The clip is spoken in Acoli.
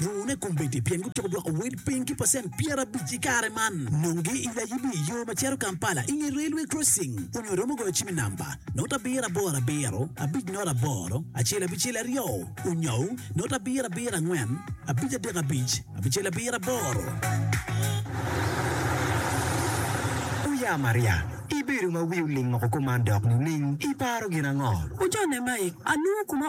Rune kombeddi pien gutyeko dwoko wel piny ki pacent pyerabic i kare man. Nongi i layibi i yo ma cito Kampala i nge railway crossing onyo iromo goyo cim i namba not abiro aboro abiro abic not aboro acel abicel aryo onyou not abiro abiro angwen abic adek abic abicel abiro aboro. Oya Maria, ibedo ma wi oling oko kuman dok nining? Iparo gin ango? Ocone mai, alungo kuma